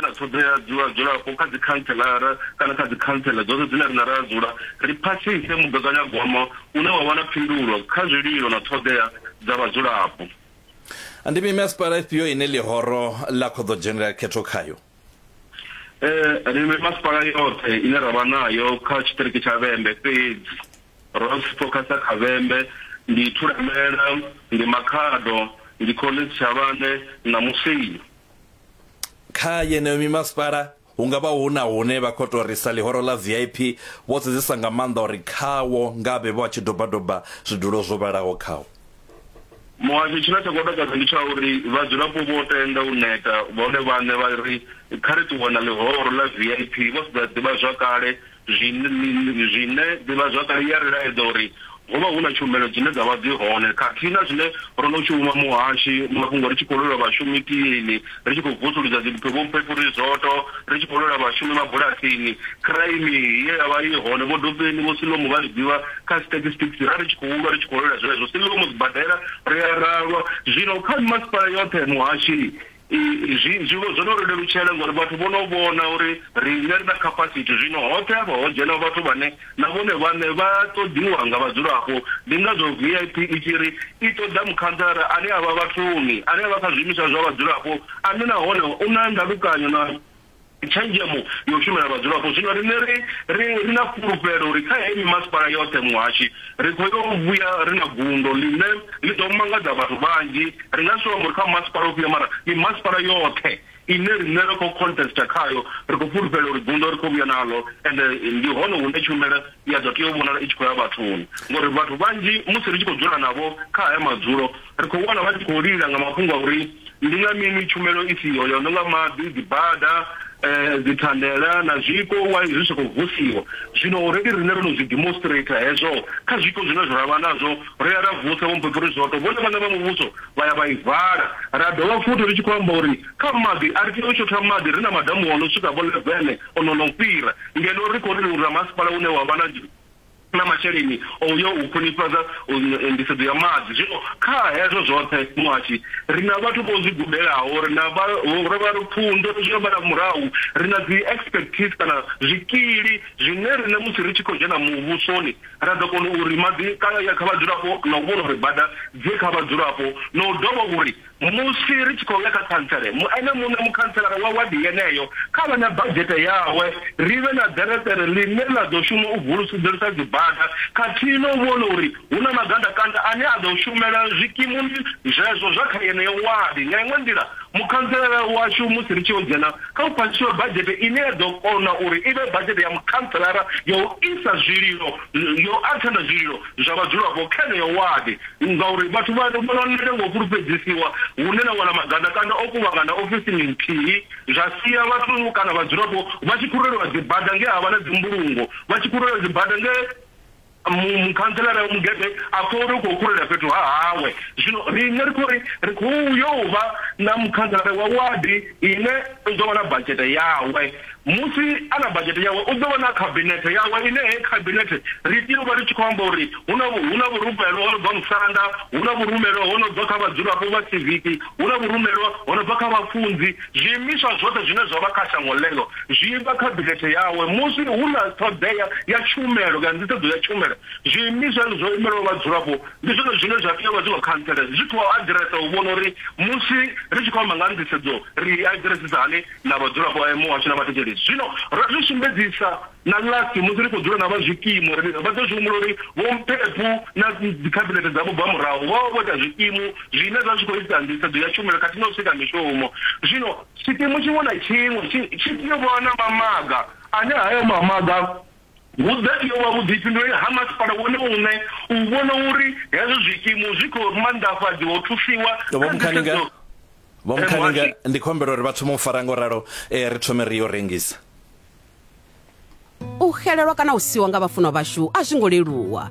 na ṱhoḓea dzi vhadzulapo kha dzikhanselara kana kha dzikhantsela dzoṱhe dzine riṋe ra dzula, ri phasise mugaganyagwama une wa vha na phindulo kha zwililo na ṱhoḓea dza vhadzulapo. Ndi mimasipala ifhio ine ḽihoro ḽa khou ḓo dzhenela khetho khayo? Ri mimasipala yoṱhe ine ra vha nayo kha tshiṱiriki tsha Vhembe, fhedzi ro fokhasa kha Vhembe, ndi Thulamela, ndi Makhado, ndi Collins Tshavhane na Musina. kha yeneyo mimasipala hu nga vha hu na hune vha khou tou risa ḽihoro ḽa vip vho sedzesa nga maanḓa uri khawo nga vhe vho a tshi dobadoba zwidulo zwo vhalaho khawo Muhasho, tshine tsha khou takadza ndi tsha uri vhadzulapo vho tenda u neta vhone vhaṋe vha ri kha ri ṱuwe na ḽihoro ḽa vip vho sedza ḓivhazwakale Zwine, zwine ḓivhazwakale ya ri laedza uri ho vha hu na tshumelo dzine dza vha dzi hone khathihi na zwine ro no shuma muhashi, mafhungo ri tshi khou lwela vhashumi tieni, ri tshi khou vusuludza dzimphe vhomphefurizoto, ri tshi khou lwela vhashumi mabulasini, kiraimi ye ya vha i hone vhodopeni, Vho Silomo vha ri ḓivha kha statistics, ra ri tshi khou lwa ri tshi khou lwela zwenezwo, Silomo, sibadela, ri a ra lwa. Zwino kha mimasipala yoṱhe, muhashi, Zwi, zwi, zwo no ri lelutshela ngori vhathu vho no vhona uri riṋe ri na capacity. Zwino hoṱhe hafha ho dzhena vhathu vhane na vhone vhaṋe vha ṱoḓiwa nga vhadzulapo. Ndi ngazwo VIP i tshi ri i ṱoḓa mukhantsara ane a vha vhathuni, ane a vha kha zwiimiswa zwa vhadzulapo, ane nahone u na ndalukanyo na. tshenzhemo ya u shumela vhadzulapo. Zwino riṋe ri ri ri na fhulufhelo uri kha heyi mimasipala yoṱhe muhashi ri khou yo vhuya ri na gundo ḽine ḽi ḓo mangadza vhathu vhanzhi. Ri nga si tou amba uri kha masipala ufhio mara mimasipala yoṱhe ine riṋe ra khou contester khayo ri khou fhulufhela uri gundo ri khou vhuya naḽo ende ndi hone hune tshumelo i a ḓo tea u vhonala i tshi khou ya vhathuni ngori vhathu vhanzhi musi ri tshi khou dzula navho kha haya madzulo ri khou wana vha tshi khou lila nga mafhungo a uri ndi nga mini tshumelo i siho ya no nga maḓi dzibada um dzithandela na zwiko wa zwi sa khou vusiwa zwino already riṋe ro no zwi demonstrate hezwo kha zwiko zwine zwa vha nazwo ri ya ra vusa vho mphepo ri zwoto vhone vhaṋe vha muvhuso vha ya vha i vala ra dovha futhi ri tshi khou amba uri kha maḓi a ri tea u shotha maḓi ri na madamu o no swika vho levene o no no fhira, ngeno ri khou ri uri na masipala une wa vha na na masheleni o u ya u khwinifhadza nḓisedzo ya maḓi. Zwino kha hezwo zwoṱhe muhashi, ri na vhathu vho zwi gudelaho, ri na vha ro vha ri pfunzo, ri zwi ambara murahu, ri na dzi expertise kana zwikili zwine riṋe musi ri tshi khou dzhena muvhusoni ra ḓo kona uri maḓi kha ya kha vhadzulapo na u vhona uri bada dzi kha vhadzulapo na u dovha uri Musi ri tshi khou ya kha khantsele, mu ene muṋe mukhantselara wa wadi yeneyo kha vhe na badzhete yawe, ri vhe na ḓereṱere ḽine ḽa ḓo shuma u vulusudzelisa dzibada khathihi na u vhona uri hu na magandakanda ane a ḓo shumela zwikimuni zwezwo zwa kha yeneyo wadi. Nga iṅwe nḓila, mukhantselara washu musi ri tshi yo dzhena kha hu phasiswe badzhete ine ya ḓo kona uri i vhe badzhete ya mukhantselara ya u isa zwililo, ya u athenda zwililo, zwa vhadzulapo kha yeneyo wadi ngauri vhathu vha vhona nete nga u fhulufhedzisiwa hune na wana magandakanda o kuvhangana ofisini nthihi zwa sia vhathu kana vhadzulapo vha tshi khurelwa dzibada nge ha vha na dzimbulungo vha tshi khurelwa dzibada nge mukhantselara wa mugede a pfha uri u khou khulela fhethu ha hawe zwino riṋe ri khou ri ri khou yo vha na mukhantselara wa wadi ine u ḓo vha na badzhete yawe Musi a na badzhete yawe, u ḓo vha na khabinethe yawe ine heyi khabinethe ri tea u vha ri tshi khou amba uri hu na hu na vhurumelwa ho no bva musanda, hu na vhurumelwa ho no bva kha vhadzulapo vha siviki, hu na vhurumelwa ho no bva kha vhafunzi. Zwiimiswa zwoṱhe zwine zwa vha kha shango ḽeḽo zwi vha khabinethe yawe. Musi hu na ṱhoḓea ya tshumelo kana nḓisedzo ya tshumelo, zwiimiswa hezwo zwo imelaho vhadzulapo ndi zwone zwine zwa tea u vha zwi khou khantsela zwi tshi khou aḓiresa u vhona uri musi ri tshi khou amba nga ha nḓisedzo ri i aḓiresisa hani. na vhadzulapo vha Emu hashu na vhathetshelesi. Zwino ro zwi sumbedzisa na Last musi ri khou dzula na vha zwikimu, ri ri vha ḓo zwi humbula uri vhomphepu na dzikhabinethe dzavho bva murahu vho vha vho ita zwikimu zwine zwa zwi khou itisa nḓisedzo ya tshumelo khathihi na u sika mishumo. Zwino tshikimu tshiṅwe na tshiṅwe tshi tshi tea u vha na mamaga, ane hayo mamaga Hu ḓo tea u vha vhuḓifhinduleli ha masipala wone muṋe u vhona uri hezwo zwikimu zwi khou manḓafhadziwa u thusiwa kha nḓisedzo. Vho Mukhaninga, ndi khou humbela uri vha thome u fara ngo ralo eh, ri thome ri yo rengisa. U xelelwa kana u siwa nga vhafunwa vhashu a zwi ngo leluwa.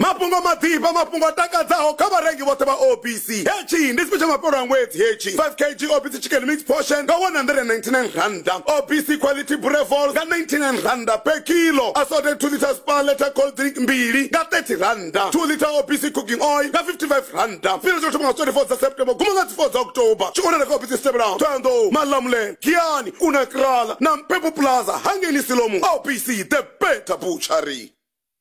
Mafhungo maḓifha, mafhungo a takadzaho kha vharengi vhoṱhe vha OPC. Hetshi ndi special mafhelo a ṅwedzi hetshi. 5 kg OPC chicken mixed portion nga R199, OPC quality Brevol nga R99 per kilo, assorted 2 litre Spar Letter cold drink mbili nga R30, 2 litre OPC cooking oil nga R55. Tshifhinga tsho thoma nga 24 dza September guma nga dzi 4 dza October. Tshi wanala kha ofisi dzi tevhelaho, Thohoyandou, Malamulele, Giyani, Unakrala na Mpepu Plaza hangei Siloam. OPC, the better butchery.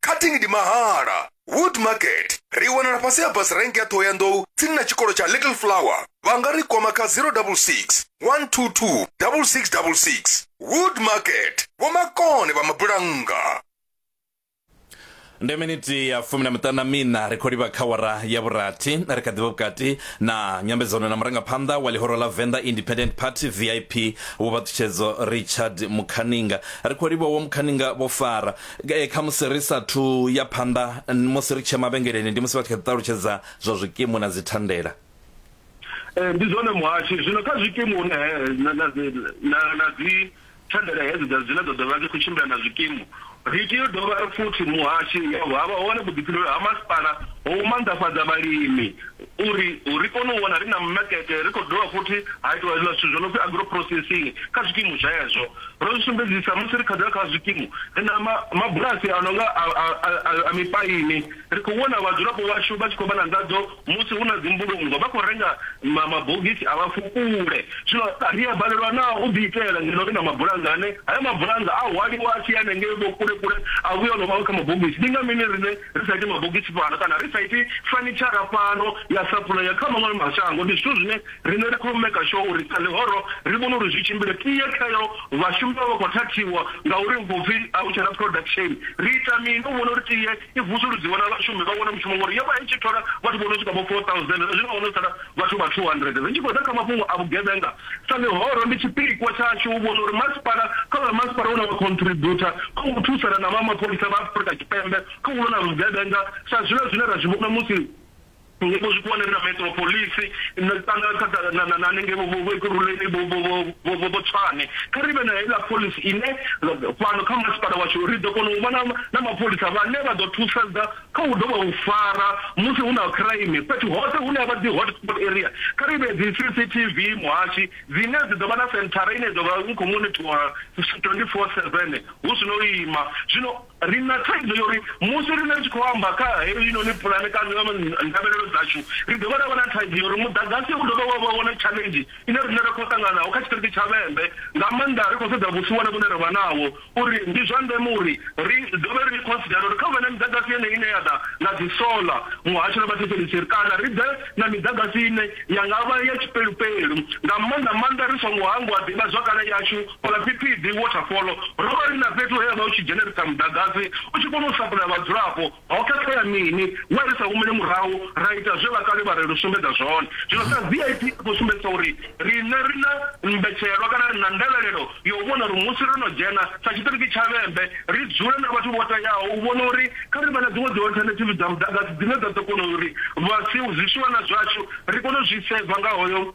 cutting ndi mahala wood market ri wanala fhasi ha bus rank ya thohoyandou tsini na tshikolo tsha little flower vha nga ri kwama kha 066 122 6666 wood market vhomakone vha mabulannga ndi miniti ya fumi na miṱanu na mina ri khou livha kha wara ya vhurathi ri kha ḓivha vhukati na nyambedzano na murangaphanḓa wa ḽihoro ḽa venḓa independent party vip vho vhaṱutshedzo richard mukhaninga ri khou livha wo mukhaninga vho fara Eh, kha musi ri sathu ya phanḓa musi ri tshia mavhengeleni ndi musi vha tshi kha ṱalutshedza zwa zwikimu na dzi thandela eh, ndi zwone muhashi zwino kha zwikimu hune eh, na na na dzi thandela hedzo dza dzine dza dovha dzi khou tshimbila na zwikimu ri tea u dovha ri futhi muhashi havha hone vhuḓifhinduleli ha masipala ho u manḓafhadza vhalimi Uri ri kone u wana ri na makete, ri khou dovha futhi ha itiwa hezwiḽa zwithu zwo no pfi agro-processing kha zwikimu zwezwo. Ro zwi sumbedzisa musi ri khazela kha zwikimu, ri na ma, mabulasi a no nga a, a, a, a, a mipaini. Ri khou vhona vhadzulapo vhashu vha tshi khou vha na nḓadzo musi hu na dzimbulungo, vha khou renga ma, mabogisi a vhafukule. Zwino ri a balelwa naa u ḓiitela ngeno ri na mabulannga ane hayo mabulannga a hwaliwa a tshi ya hanengei vho kule-kule a vhuya o no vha kha mabogisi? Ndi nga mini riṋe ri sa iti mabogisi fhano kana ri sa iti fanitshara fhano ya sapulaya kha maṅwe mashango. Ndi zwithu zwine riṋe ri khou maker sure uri sa ḽihoro ri vhone uri zwi tshimbile. Tie khayo vhashumi vha vha vha khou thathiwa ngauri hu khou pfi a hu tshena production. Ri ita mini u vhona uri tie i vusuludziwa na vhashumi vha wane mushumo ngori yo vha i tshi thola vhathu vho no swika vho 4000 zwa zwino ho no sala vhathu vha 200. Ri tshi khou ḓa kha mafhungo a vhugevhenga Sa mihoro, ndi tshipikwa tshashu u vhona uri masipala kha vha masipala une wa khontributha kha u thusana na vha mapholisa vha Afrika Tshipembe kha u lwa na vhugevhenga sa zwiḽa zwine ra zwi vhona musi ngeno zwikhuwani ri na Metropolis na kana kha na na na hanengei vho vho vho Ekurhuleni vho vho vho vho vho Tshwane. Kha ri vhe na heiḽa phoḽisi ine fhano kha masipala washu ri ḓo kona u vha na na mapholisa vhane vha ḓo thusedza Kha hu ḓo vha u fara musi hu na khaimi fhethu hoṱhe hune ha vha dzi hot spot area. Kha ri vhee dzi CCTV muhashi dzine dzi ḓo vha na senthara ine ya ḓo vha i khou monithola 24-7 hu si na u ima. Zwino ri na thaidzo ya uri musi riṋe ri tshi khou amba kha heinoni pulane kana ndavhelelo dzashu, ri dovha ra vha na thaidzo ya uri muḓagasi u dovha wa vha wone tshaḽenzhi ine riṋe ra khou ṱangana naho kha tshiṱiriki tsha Vhembe, nga maanḓa ri khou sedza vhusiwana vhune ra vha naho. uri ndi zwa ndeme uri ri dovhe ri khonsidere uri kha hu vhe na miḓagasi yeneyi ine ya ḓa nga dzisola, muhasho na vhathetshelesi, kana ri ḓe na miḓagasi ine ya nga vha ya tshipelupelu, nga maanḓa-maanḓa ri songo hangwa ḓivhazwakale yashu. Fhaḽa Phiphiḓi Waterfall ro vha ri na fhethu he ha vha hu tshi dzhenerisa muḓagasi u tshi kona u sapulaya vhadzulapo. Ho khakhea mini? Wa ri sa humele murahu ra ita zwe vhakale vha ri ri sumbedza zwone. Zwino sa VIP ri khou sumbedzisa uri riṋe ri na mbetshelwa kana ri na ndavhelelo ya u vhona uri musi ro no dzhena sa tshiṱiriki tsha Vhembe, ri dzule na vhathu vho teaho u vhona uri kha ri vhe na dziṅwe dziolthanethivi dza muḓagasi dzine dza ḓo kona uri vha si zwiswiwana zwashu ri kone u zwi seiva nga hoyo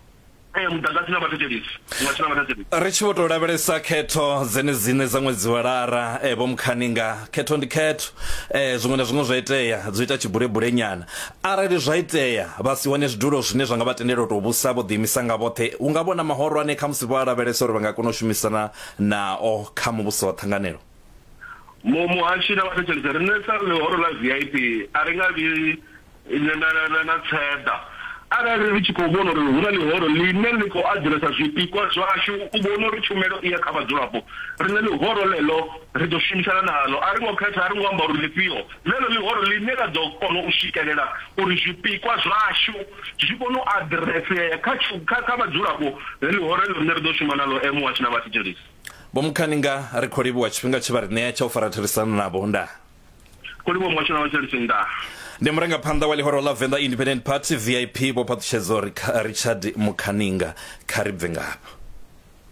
e muḓagasi na vhathetshelisi muhasho na vhathetshelisi. Ri tshi vho tou lavhelesa khetho dzenedziṋe dza ṅwedzi wa lara eh, vho Mukhaninga khetho ndi khetho eh, zwiṅwe na zwiṅwe zwa itea dzo ita tshibulebule nyana arali zwa itea vha si wane zwidulo zwine zwa nga vha tendela u tou vhusa vho ḓiimisa nga vhoṱhe hu nga vhona mahorwane kha musi vho a lavhelesa uri vha nga kona u shumisana nao kha muvhuso wa ṱhanganelo Mu muhashi na vhathetshelisi riṋe sa ḽihoro ḽa vip a ri nga vhi Nyangalelo na Tseḓa, Arali ri tshi khou vhona uri hu na ḽihoro ḽine ḽi khou adzhuresa zwipikwa zwashu u vhona uri tshumelo i ya kha vhadzulapo, riṋe ḽihoro ḽeḽo ri ḓo shumisana naḽo. A ri ngo khetha, a ri ngo amba uri ḽifhio, ḽeḽo ḽihoro ḽine ḽa ḓo kona u swikelela uri zwipikwa zwashu zwi kone u aḓiresea kha kha kha vhadzulapo, ḽe ḽihoro heḽo riṋe ri ḓo shuma naḽo, e Muhasho na Vhathetshelesi. Vho Mukhaninga, Ri khou livhuwa tshifhinga tshe vha ri ṋea tsha u fara therisano navho. Ndaa. kho livhuwa muhasho na vhatshelisi nga ndi murangaphanḓa wa ḽihoro ḽa venḓa independent party vip vho phaṱutshedzo richard mukhaninga kha ri bve ngafha